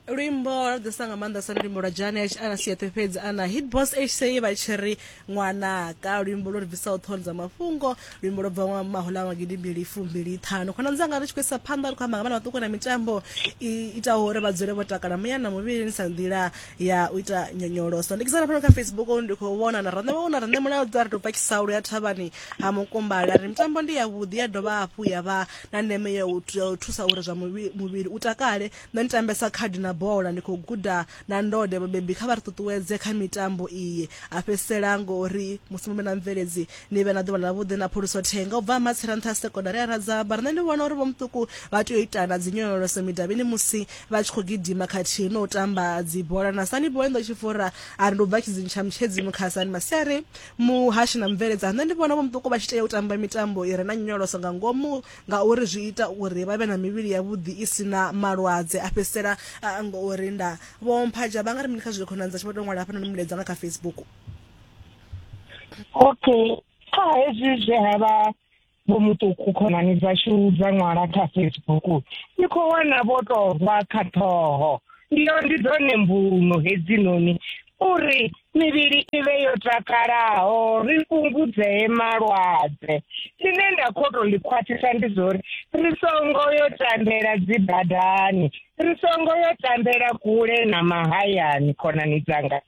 luimbo lwa ḓisa nga maanḓa sa luimbo lwa janet ana siete fhedzi ana hitbos hc vha tshi ri ṅwanaka luimbo lwo ri bvisaho ṱhoni dza mafhungo luimbo lwo bva mahola magidi mbili fumbili ṱhanu khona dzanga ri tshi khou isa phanḓa ri khou amba nga vhana vhaṱuku na mitambo i itaho uri vha dzule vho takala muya na muvhilini sa nḓila ya u ita nyonyoloso ndi kisana fhano kha facebook ndi khou vhona na rane vhona rane mulayo dza ri tou pakisa lu ya thavhani ha mukumbala ri mitambo ndi yavhuḓi ya dovha hafhu ya vha na ndeme ya u ya u thusa uri zwa muvhi- muvhili u takale nṋe ndi tambesa khadi na bola ndi khou guda na ndode vhabebi kha vha ri ṱuṱuwedze kha mitambo iyi a fhedzisela ngori musi mume na mveledzi ni vhe na ḓuvha ḽavhuḓi na phuluso thenga u bva ha matsira nṱha ha sekondari ya radzaba riṋe ndi vhona uri vhomuṱuku vha tea u itana dzi nyonyoloso midavhini musi vha tshi khou gidima khathihi no u tamba dzibola na sani boy ndo tshifura a ri ndi u bva tshidzini tsha mutshedzi mukhasani masiari Muhashi na mubveledza, nṋe ndi vhona vho muṱuku vha tshi tea u tamba mitambo i re na nyonyoloso nga ngomu ngauri zwi ita uri vha vhe na mivhili ya vhuḓi i si na malwadze, a fhedzisela a ngo u rinda. Vho Mphaja vha nga ri mini kha zwe khonani dzashu vha tou ṅwala hafhanoni mulaedza nga kha Facebook? Okay, kha hezwi zwe ha vha vho muṱuku khonani dzashu dza ṅwala kha facebook ni khou wana vho tou rwa kha ṱhoho ndiyo ndi dzone mbuno hedzinoni uri mivhili i vhe yo takalaho ri fhungudzee malwadze tshine nda khou tou ḽi khwaṱhisa ndi zwa uri ri songo yo tambela dzi badani ri songo yo tambela kule na mahayani khonani dzanga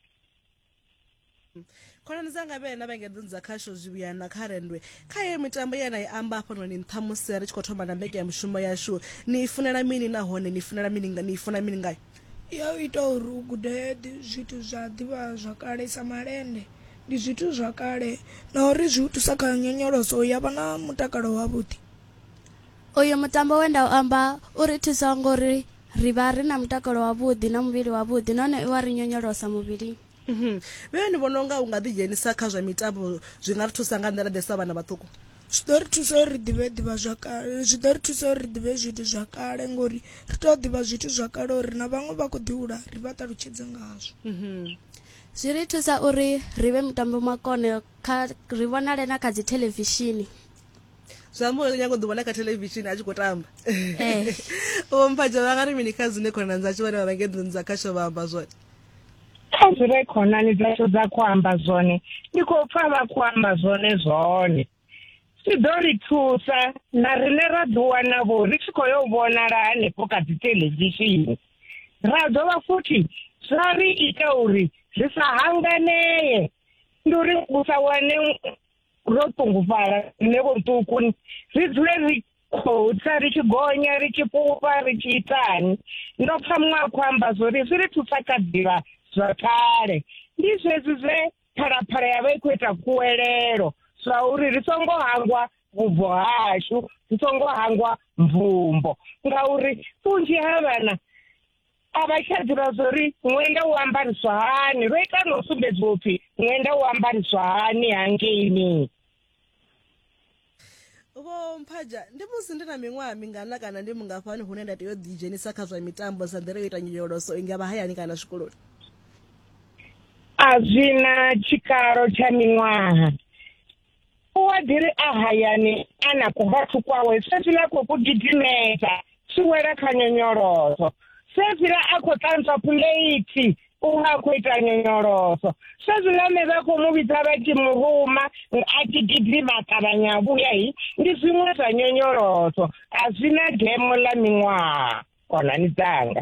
khonani dzanga vhe na vhengedzoni dza khasho zwivhuya na kha rendwe kha yeyo mitambo ye na i amba hafhanoni nṱha musi ri tshi khou thoma na mbeke ya mushumo yashu ni i funela mini nahone ni funela mini ni i funa mini ngayo ya u ita uri u gude zwithu zwa ḓivha zwa kale sa malende ndi zwithu zwa kale na uri zwi u thusa kha nyonyoloso ya vha na mutakalo wavhuḓi uyu mutambo we nda u amba u ri thusa ngori ri vha ri na mutakalo wavhuḓi na muvhili wavhuḓi nahone i wa ri nyonyolosa muvhili mhm. vhee ni vhona unga u nga ḓidzhenisa kha zwa mitambo zwi nga ri thusa nga nḓila ḓe sa vhana vhaṱuku zwi ḓo ri thusa uri ri ḓivhe ḓivha zwa kale zwi ḓo ri thusa uri ri ḓivhe zwithu zwa kale ngori ri tea u ḓivha zwithu zwa kale uri na vhaṅwe vha khou ḓihula ri vha ṱalutshedze ngazwo mhm. zwi ri thusa uri ri vhe mutambo makone kha ri vhonale na kha dzi thelevishini zwi amba uri nyako ḓivhona kha thelevishini a tshi khou tamba eh. vho mphatsha vha nga ri mini kha zwine khonani dzatsho vhane vha vha ngedzoni dza khasho vha amba zwone kha zwi re khonani dzatsho dza khou amba zwone ndi khou pfa vha khou amba zwone zwone zwi ḓo ri thusa na riṋe ra ḓiwana vho ri tshi khou yo vhonala hanefho kha dzi thelevishini ra dovha futhi zwa ri ita uri ri sa hanganee ndi uri u sa wane ro ṱungufhala nṋe vho ṱuku ri dzule ri khou tsa ri tshi gonya ri tshi fhufha ri tshi itani ndo pfa muṅwe a khou amba zwo ri zwi ri thusa kha ḓivha zwa kale ndi zwezwi zwe phalaphala ya vha i khou ita kuwelelo zwa uri ri songo hangwa vhubvo hashu ri songo hangwa mvumbo ngauri vhunzhi ha vhana a vha tsha ḓivha zwo ri ṅwenda u ambariswa hani ro ita no sumbedziwa upfi ṅwenda u ambariswa hani hangeini vho mphaja ndi musi ndi na miṅwaha mingana kana ndi mungafhani hune nda tea u ḓidzhenisa kha zwa mitambo sa nḓila yo ita nyonyoloso i nga vha hayani kana zwikoloni a zwi na tshikalo tsha miṅwaha wa ḓi ri a hayani a na kubathu kwawe sefila khou ku gidimedza tshi wela kha nyonyoloso sefila a khou ṱantswa puleithi u nga khou ita nyonyoloso sezwilane vha khou mu vhidza vha tshi mu ruma a tshi gidima ṱavhanya vhuya hi ndi zwiṅwe zwa nyonyoloso a zwi na demo ḽa miṅwaha khonani dzanga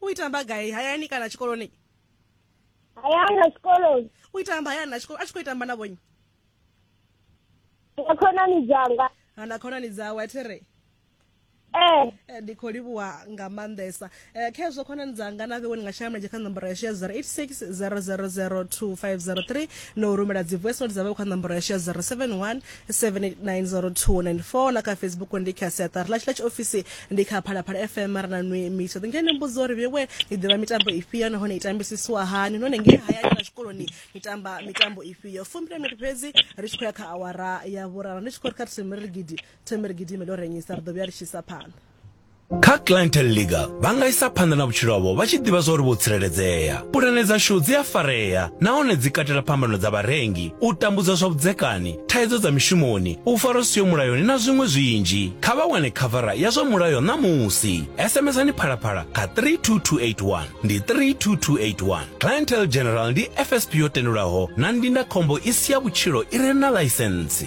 u itamba gai hayani kana tshikoloni hayani na tshikoloni u itamba hayani na tshikolo a tshi khou itamba na vhonyi na khonani dzanga na khonani dzawe a thi re Eh. eh ndi khou livhuwa nga maanḓesa um eh, kha hezwo khonani dzanga na vhewe ni nga shaya mulenzhe kha nomboro yashu ya 0860002503 no rumela dzi voice note dza vhewe kha nomboro yashu ya 071 7890294 na kha facebook ndi kha siaṱari ḽashu ḽa tshiofisi ndi kha phalaphala fm ra na nwi miso ḓinge ni mbudzo uri vhewe ni ḓivha mitambo ifhio nahone i tambisisiwa hani nahone ngei hayani na zwikoloni ni tamba mitambo ifhio fumbile miri fhedzi ri tshi khou ya kha awara ya vhurara ndi tshi khou ri kha themere gidi themere gidi ime ḽo renyisa ri ḓo vhuya ri tshi isa phanḓa Kha Clientele League, vha nga isa phanḓa na vhutshilo havho vha tshi ḓivha zwa uri vho tsireledzea. Pulane dzashu dzi a farea nahone dzi katela phambano dza vharengi, u tambudzwa zwa vhudzekani, thaidzo dza mishumoni, u farwa zwi siho mulayoni na zwiṅwe zwinzhi. Kha vha wane khavara ya zwa mulayo ṋamusi. SMSani Phalaphala kha 32281. Ndi 32281. Clientele General ndi FSP yo tendelwaho na ndindakhombo i si ya vhutshilo i re na ḽaisentsi.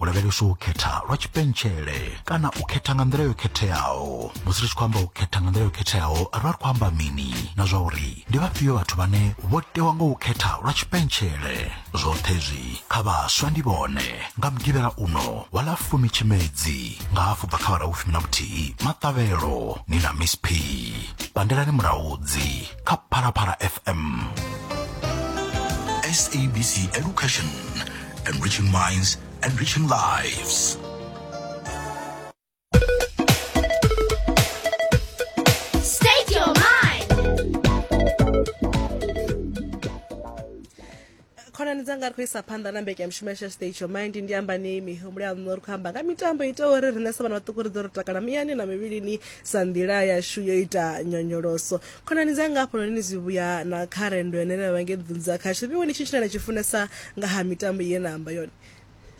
u lavheleswa u khetha lwa tshipentshele kana u khetha nga nḓila yo khetheaho musi ri tshi khou amba u khetha nga nḓila yo khetheaho ri vha ri khou amba mini na zwa uri ndi vhafhio vhathu vhane vho tewa nga u khetha lwa tshipentshele zwoṱhe zwi kha vhaswa ndi vhone nga mugivhela uno wa ḽa fumi tshimedzi nga hafhu bva kha vhara hu fumi na vhuthihi maṱavhelo ni na miss p pandelani muraudzi kha phalaphala fm SABC Education enriching minds, enriching lives. State your mind. khonani dzanga ri khou isa phanḓa na mbekanyamushumo yasha stage your mind ndi amba nei mihumbulo ya ṋo ri khou amba nga mitambo i itaho uri riṋe sa vhana vhaṱuku ri ḓo ri takala muyani na mivhilini sa nḓila yashu yo ita nyonyoloso khonani dzanga hafhanoni ni zwi vhuya na kha rendo yane na vha nge ḓunza khashu vhiwe ni tshi tshine na tshi funesa nga ha mitambo ye na amba yone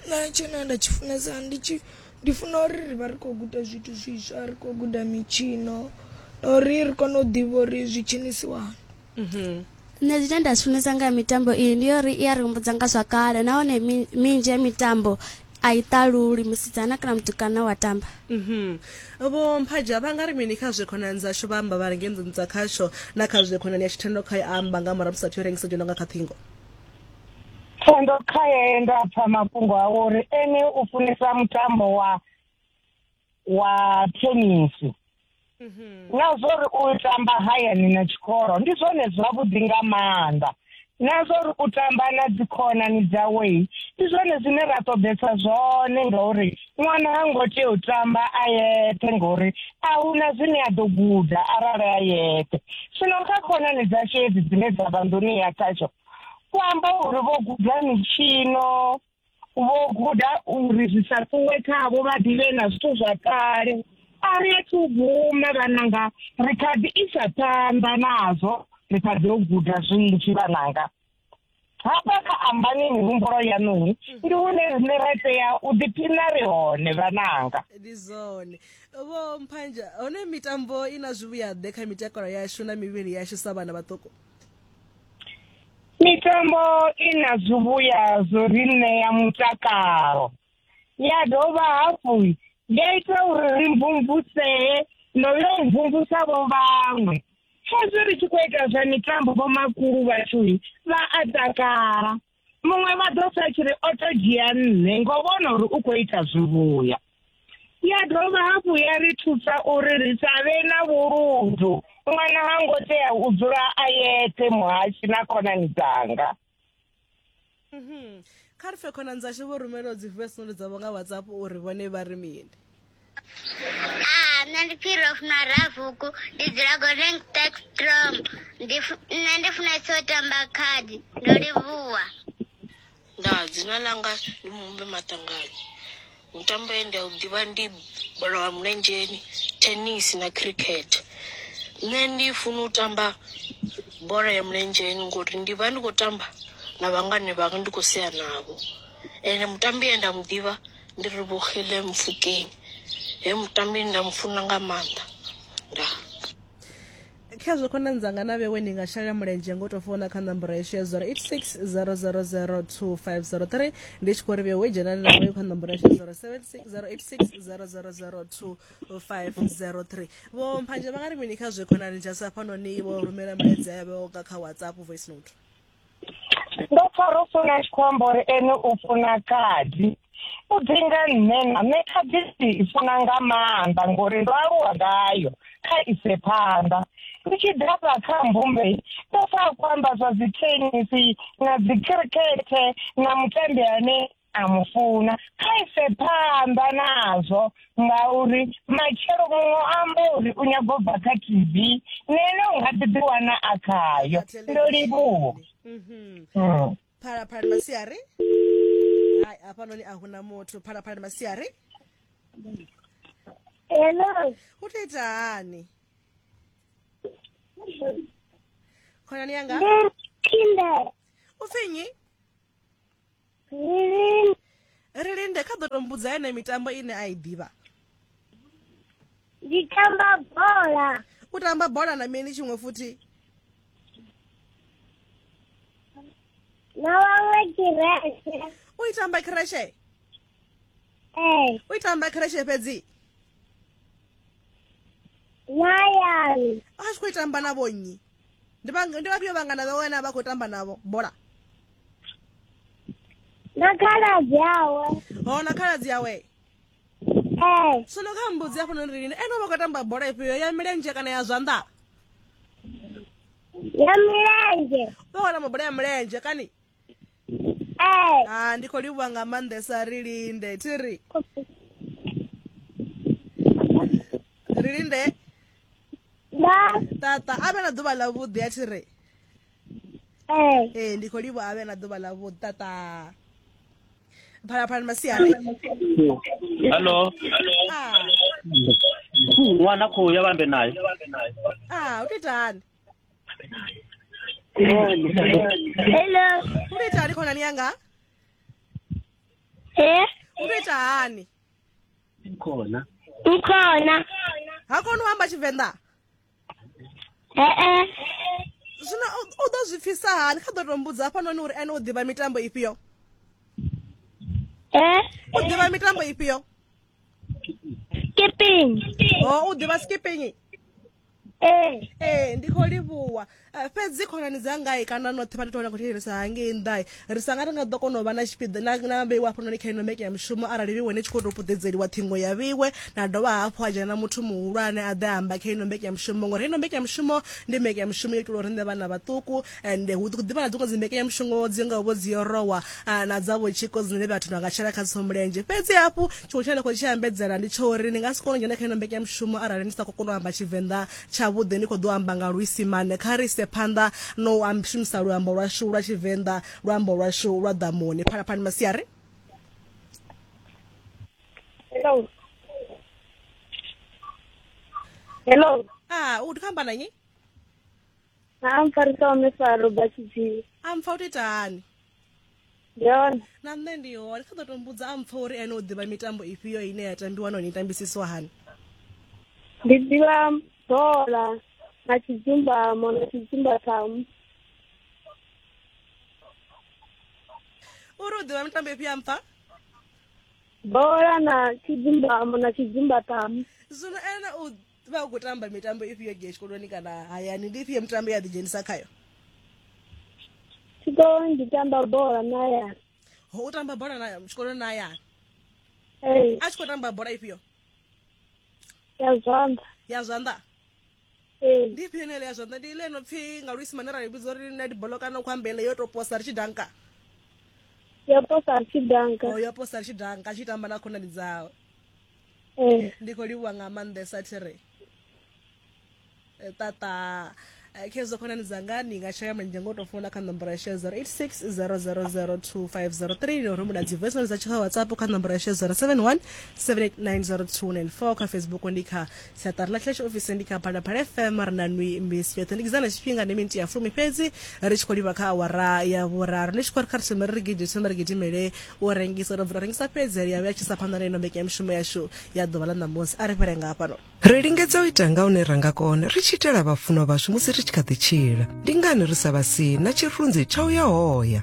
na tshine nda tshi funesa ndi tshi ndi funa uri ri vha ri khou guda zwithu zwiswa ri khou guda mitshino na uri ri kone u ḓivha uri zwi tshinisiwani mhm. nṋe zwine nda zwi funesa nga mitambo iyi ndi uri i ya ri humbudza nga zwa kale nahone minzhi ya mitambo a i ṱaluli musidzana kana mutukana wa tamba mhm. vho mphaja vha nga ri mini kha zwe khonani dzashu vha amba vha ri ngenḓuni dza khasho na kha zwe khonani ya tshithendo kha ya amba nga murahu musathu yo rengisa dzhono nga kha ṱhingo thendo khaye nda pfa mafhungo awo uri ene u funesa mutambo wa wa tenisi na zwa uri u tamba hayani na tshikolo ndi zwone zwavhuḓi nga maanḓa na zwa uri u tamba na dzikhonani dzawe ndi zwone zwine ra ṱoḓesa zwone ngauri ṅwana ha ngo tea u tamba a yeṱhe ngauri a huna zwine a ḓo guda arali a yeṱhe zwino kha khonani dzashu hedzi dzine dza vha nḓuni ya khasho ku amba uri vho guda mitshino vho guda uri zwi sa ṱuwe khavho vha ḓivhe na zwithu zwa kale a ri a thu guma vhananga ri kha ḓi isa phanḓa nazwo ri kha ḓi o guda zwinzhi vhananga hafha kha ambani mihumbulo yaṋuhi ndi hune rine ra tea u ḓiphina ri hone vhananga ndi zwone vho mphanja hone mitambo i na zwivhuyaḓe kha mitakalo yashu na mivhili yashu sa vhana vhaṱuku mitambo i na zwivhuya zwo ri ṋea mutakalo ya dovha hafhu ya ita uri ri mvumvusee no yo mvumvusa vho vhaṅwe hezwi ri tshi khou ita zwa mitambo vhomakulu vhashu vha a takala muṅwe vha ḓo sa tshi ri o to dzhia nṋe ngo vhona uri u khou ita zwivhuya ya dovha hafhu ya ri thusa uri ri sa vhe na vhuludu ṅwana ha ngo tea u dzula a yeṱhe muhashi na khonani dzanga mhm. kha ri fe khonani dzashu vho rumelaho dzi voice note dzavho nga whatsapp uri vhone vha ri mini Ah, nṋe ndi phiri funa rafuku ndi dzula golden spectrum ndi fu- nṋe ndi funesa u tamba khadi ndo livhuwa nda dzina langa ndi mumbe maṱangani mitambo ye nda u ḓivha ndi bola ya mulenzheni tennis na cricket nṋe ndi funa u tamba bola ya mulenzheni ngori ndi vha ndi khou tamba na vhangane vhanga ndi khou sea navho ende mutambi ye nda mu ḓivha Ndi ri vhukile Mupfukeng. He mutambi nda mu funa nga maanḓa. Ndaa. Khezwo khonani dzanga na vhewe ni nga shela mulenzhe ngo tou founa kha nomboro yashu ya 0860000250 ndi tshi khou ri vhewe dzhenani na vhoyo kha nomboro yashu ya 076086000250 vho mphanje vha nga ri mini kha zwe khonani dzha sa fhanoni vho rumela milaedza yavho nga kha whatsapp voice note ndo pfa ro funa a tshi khou amba uri ene u funa khadi u ḓi nga nṋe na nṋe khadi ndi i funa nga maanḓa ngori ndo aluwa ngayo kha ise phanḓa ndi tshi ḓafha kha mbumbe ndo pfa a khou amba zwa dzi tenisi na dzi khirikhethe na mutambi ane a mu funa kha ise phanḓa nazwo ngauri matshelo muṅwe amba uri u nyago bva kha tv nene u nga ḓi ḓiwana a khayo ndo livhuwa mhm. hmm. phalaphalani masiari hai hafhanoni a huna muthu phalaphalani masiari hello u to ita hani khonani yanga u pfi nnyi ri linde kha ḓo tombudza yene mitambo ine a i ḓivha ndi tamba bola u tamba bola na mini tshiṅwe futhi na waṅwe kireshe u i tamba kireshe ee u i tamba kireshe fhedzi na yani a tshi khou i tamba na vhonnyi ndi vha- ndi vhafhio vhangana vhawe ane a vha khou tamba navho bola na khaladzi awe ho na khaladzi yawe ee sono kha mbudzi ya funa ri lini ene u vha khou tamba bola ifhio ya milenzhe kana ya zwanḓa ya milenzhe u vha khou tamba bola ya milenzhe kani Ee. ah ndi khou livhuwa nga maanḓesa ri linde thi ri ri linde Nda. tata a vhe na ḓuvha ḽa vhuḓi a thi ri Ee. ee ndi khou livhuwa a vhe na ḓuvha ḽa vhuḓi tata phalaphalani masiari Hello. ah Ṅwana khou ya vhambe nayo. ah u to itani hello u tou ita hani khonani yanga e u tou ita hani khona ukhona ha koni u amba tshivenḓa e-e zwino u- u ḓo zwi pfisa hani kha ḓo tou mbudza hafhanoni uri ene u ḓivha mitambo ifhio e u ḓivha mitambo ifhio skipping o u ḓivha skipping ee ee ndi khou livhuwa Eh, fhedzi khonani dzangai kana noṱhe vha titola khou thetshelesa hangei nnḓai ri sanga ri nga ḓo kona u vha na tshipiḓa na- na vheiwa hafhanoni kha ino mbeke ya mushumo arali vheiwe ni tshi khou tou puḓedzeliwa ṱhingo ya vheiwe na dovha hafhu ha dzhena muthu muhulwane a ḓe a amba kha ino mbeke ya mushumo ngori ino mbeke ya mushumo ndi mbeke ya mushumo yo itelwa uri nṋe vhana vhaṱuku and hu ḓi vha na dziṅwe dzi mbekanyamushumo dzi ngaho vho dzi yorowa ah, na dza vhotshiko dzine vhathu vha nga tshela kha dzo mulenzhe fhedzi hafhu tshiṅwe tshine nda khou tshi ambedzela ndi tsho uri ni nga si kone u dzhena kha ino mbekanyamushumo arali ni sa khou kona u amba tshivenḓa tshavhuḓi ni khou ḓo amba nga luisimane kha ri ise phanḓa no u shumisa luambo lwashu lwa tshivenḓa luambo lwashu lwa ḓamuni phalaphalani masiari hello hello ah u ndi khou amba na nyi ha mpfarisa wa mifaro batshitshii a mpfa u to ita hani ndi hone na nṋe ndi hone kha ḓo to mbudza a mpfa uri ene u ḓivha mitambo ifhio ine ya tambiwa nahone i tambisiswa hani ndi ḓivha bola na tshidzumbamo na tshidzumbathamu uri u ḓivha mitambo ifhio a mpfa bola na tshidzumbamo na tshidzumbathamu zwino ene u vha u khou tamba mitambo ifhio ge tshikoloni kana hayani ndi ifhio mitambo ya ḓidzhenisa khayo tshikoloni ndi tamba bola na hayani ho u tamba bola na tshikoloni na hayani ee a tshi khou tamba bola ifhio ya zwanḓa ya zwanḓa ee ndi ifhio nele ya zwanḓa ndi ile no pfhi nga luisimane ra vhidza uri na dibolo kana khou ambele yo to posa ri tshi danka ya posa ri tshi danka o yo posa ri tshi danka a tshi tamba na khonani dzawe eh. ndi khou livhuwa nga maanḓesa thi ri eh, tata eh, khezwo khonani dzanga ni nga shaya mulenzhe ngo tou founa kha nomboro ya shaya 0860002503 ni uri muna dzi voicemail dza tshi kha whatsapp kha nomboro ya shaya 071 7890294 kha facebook ndi kha siaṱari ḽa church office ndi kha phalaphala fm ri na nwi misi yoṱhe ndi kidzana tshifhinga ndi miniti ya fumi fhedzi ri tshi khou livha kha awara ya vhuraru ndi tshi khou ri kha ri thome ri ri gidi thome ri gidimele u rengisa ro bvula rengisa fhedzi ri ya vhuya tshisa phanḓa na ino mbekanyamushumo yashu ya ḓuvha ḽa ṋamusi a ri fhele nga hafhano ri lingedza u ita nga hune ra nga kona ri tshi itela vhafunwa vhashu musi ri tshi kha ḓi tshila ndi ngani ri sa vha si na tshirunzi tsha u ya hoya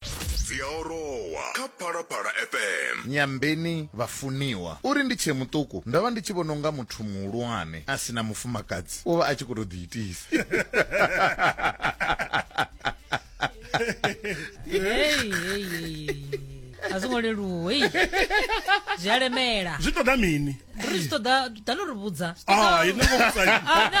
dzi a orowa kha phalaphala fm nyambeni vhafuniwa uri ndi tshee muṱuku ndo vha ndi tshi vhona unga muthu muhulwane a si na mufumakadzi u vha a tshi khou tou ḓiitisa Hey, hey, hey, hey. a zwo ngo leluwa hei zwi a lemela zwi ṱoḓa mini ri zwi ṱoḓa ḓa no ri vhudza Zwi ṱoḓa- Ah, i no ngo vhudza. Ah, no.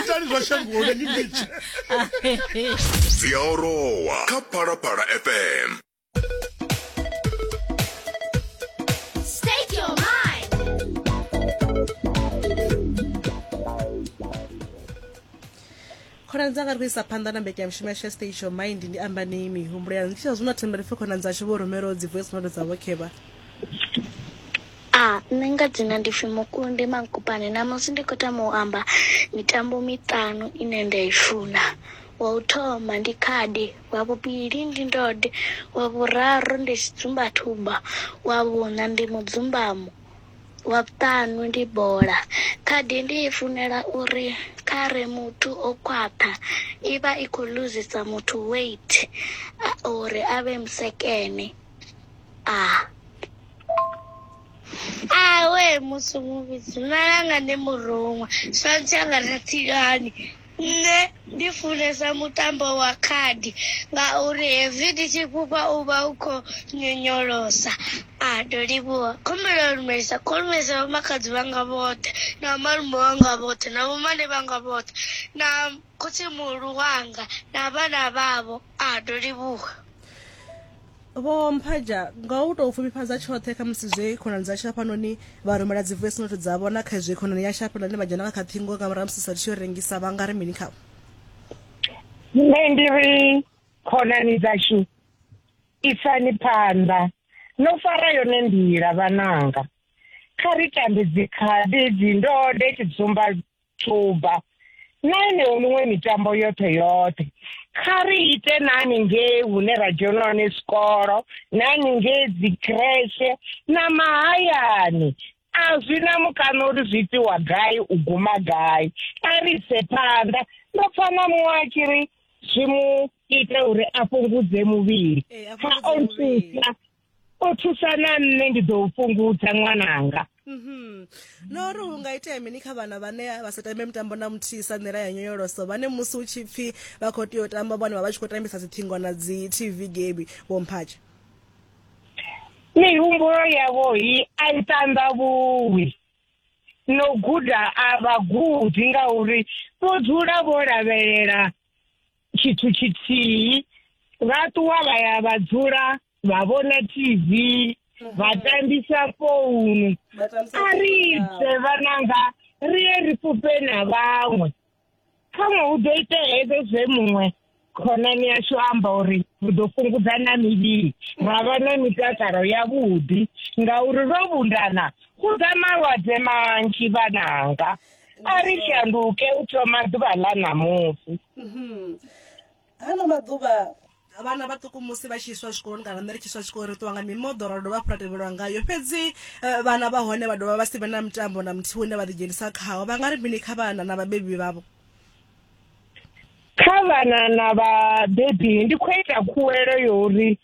itani zwa shangoni ni litshe dzi a orowa kha phalaphala fm khonani dzanga ri khou isa phanḓa na mbekanyamushumo yashu ya station mind ndi amba nei mihumbulo yanu ndi tshia zwino thembele pfhe khonani dzashu vho rumelaho dzi voice note dza vhokhevha Ah, nṋe nga dzina ndi pfi Mukundi Mankopane ṋamusi ndi kho tama u amba mitambo miṱanu ine nda i funa. Wa u thoma ndi khadi, wa vhuvhili ndi ndode, wa vhuraru ndi tshidzumba thuba, wa vhuṋa ndi mudzumbamo, wa vhuṱanu ndi bola. Khadi ndi i funela uri khare muthu o khwaṱha i vha i kho luzisa muthu weight uri avhe musekene. Ah. Ah, we musi muvhidzi malanga ndi muruṅwa swantsi anga rathilani nṋe ndi funesa mutambo wa khadi ngauri hezwi ndi tshi fhufha u vha u khou nyonyolosa a ndo livhuwa khumbelo ya lumelisa khou lumelisa vhomakadzi vhanga vhoṱhe na malume wanga vhoṱhe na vhomane vhanga vhoṱhe na khotsi muhulu wanga na vhana vhavho a ndo livhuwa vho mphaja nga u tou pfufhifhadza tshoṱhe kha musi zwe khonani dzashu hafhanoni vha rumela dzi voice note dzavho na kha izwi khonani yashu hafhaḽa ane vha dzhena nga kha ṱhingo nga murahu musi sa tshi yo rengisa vha nga ri mini khavho nṋe ndi ri khonani dzashu isani phanḓa no fara yone nḓila vhananga kha ri tambe dzikhadi dzindode tshidzumba tshuba na yeneyo miṅwe mitambo yoṱhe yoṱhe kha ri ite na haningei hune ra dzhena hone zwikolo na haningei dzikreshe na mahayani a zwi na mukano uri zwi itiwa gai u guma gai a ri ise phanḓa ndo pfa na muṅwe a tshi ri zwi mu ite uri a fhungudze muvhili ha o nthusa o thusa na nṋe ndi ḓo u fhungudza ṅwananga Mhm. no ri hu nga itea mini kha vhana vhane vha sa tambe mitambo na muthihi sa nḓila ya nyonyoloso vhane musi hu tshi pfhi vha khou tea u tamba vhone vha vha tshi khou tambisa dziṱhingo na dzi tv game vho mphatshe mihumbulo yavho i a i ṱanḓavhuwi no guda a vha gudi ngauri vho dzula vho lavhelela tshithu tshithihi vha ṱuwa vha ya vha dzula vha vhona tv vha tambisa founu a ri ite vhananga ri ye ri fhufhe na vhaṅwe khaṅwe hu ḓo itea hezwo zwe muṅwe khonani yashu amba uri ri ḓo fhungudza na mivhili ra vha na mitakalo yavhuḓi ngauri ro vhundana hu ḓa malwadze manzhi vhananga a ri shanduke u thoma ḓuvha ḽa ṋamusi mhm. ano maḓuvha vhana vhaṱuku musi vha tshi iswa tshikoloni kana nṋe ri tshi iswa tshikoloni ri ṱuwa nga mimoḓo ra dovha hafhu ra tevhelwa ngayo fhedzi eh, vhana vha hone vha dovha vha si vhe na mitambo na muthihi une vha ḓidzhenisa khawo vha nga ri mini kha vhana na vhabebi vhavho kha vhana na vhabebi ndi khou ita khuwelo yo uri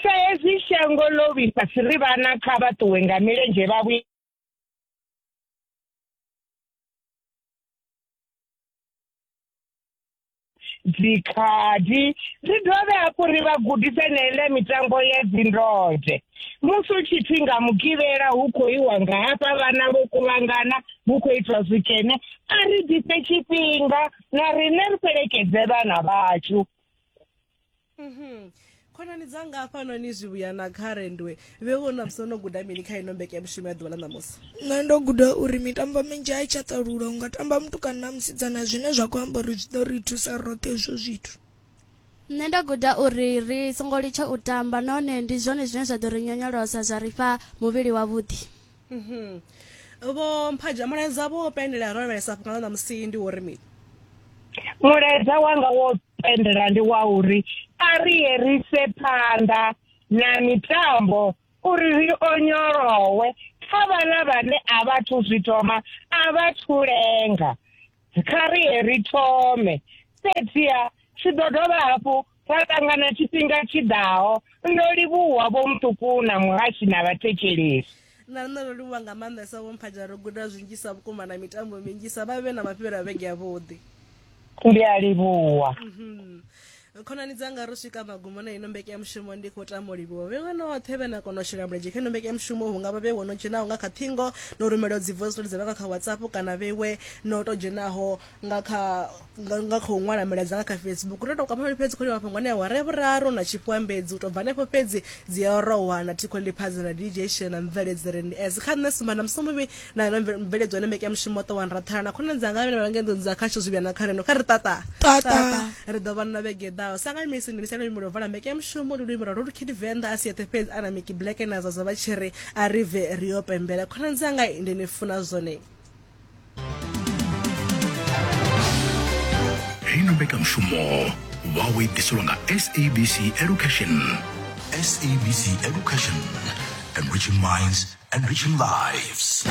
sa hezwi shango ḽo vhifhasi ri vhana kha vha ṱuwe nga milenzhe vha vhuye dzikhadi ri dovhe hafhu ri vha gudise na ile mitambo ya dzindode musi u tshi pfi nga mugivhela hu khou iwa nga hafha vhana vho kuvhangana hu khou itwa zwikene a ri ḓise tshifhinga na riṋe ri fhelekedze vhana vhashu khonani dzanga hafhano ni zwivhuya na kha rendwe vhe vho na musi no guda mini kha ino mbeke ya mushumo ya ḓuvha ḽa ṋamusi nṋe ndo guda uri mitambo minzhi a i tsha ṱalula u nga tamba mutukana na musidzana zwine zwa khou amba uri zwi ḓo ri thusa roṱhe hezwo zwithu nṋe nda guda uri ri songo litsha u tamba nahone ndi zwone zwine zwa ḓo ri nyonyolosa zwa ri fha muvhili wavhuḓi Mhm. vho mphaja mulaedza vho wo pendela ya rovhelesa fhunga ḽa ṋamusi ndi wo ri mini mulaedza wanga wo pendela ndi wa uri a ri ye ri se phanḓa na mitambo uri ri onyolowe kha vhala vhane a vha thu zwi thoma a vha thu lenga kha ri ye ri thome fhedziha tshi ḓo dovha hafhu Ra ṱangana tshifhinga tshi ḓaho. Ndo livhuwa vho muṱuku na muhashi na vhathetshelesi. Na nṋe ndo livhuwa nga maanḓesa vho mphaja ro guda zwinzhisa vhukuma na mitambo minzhisa vha vhe na mafhelo a vhege ya vhuḓi. Ndi a livhuwa. Mhm. Khonani dzanga ro swika magumo na ino mbeke ya mushumo ndi khou tama u livhuwa vhe vhanoṱhe vhe na kona u shela mulenzhe kha ino mbeke ya mushumo hu nga vha vhe wono dzhenaho nga kha ṱhingo no rumelaho dzi voice note dza vhanga kha WhatsApp kana vhewe no to dzhenaho nga kha nga, nga khou ṅwala milaedza nga kha facebook ndo tou kwama fhedzi khou mafhungo ane awara ya vhuraru na tshifhuambedzi u tou bva hanefho fhedzi dzi a rohwa na thikho liphadzo na dj shela na mveledzi ri ndi as kha nṋe sumba na musomuvhi na na mveledzo ane mbekanyamushumo ṱo wa nrathana na khonani dzanga vhane vha ngendo dza khasho zwi vhuya na kha reno kha ri tata tata ri ḓo vha na vhege ḓaho sangani misi ndi misela luimbo lwa vala mbekanyamushumo ndi luimbo lwa lolukid venḓa a si yeṱhe fhedzi ana miki black na zwa zwa vha tshi ri a ri bve ri yo pembela khonani dzanga ndi ni funa zwone heino mbekanyamushumo vhawo i ḓiselwa nga sabc education sabc education enriching minds enriching lives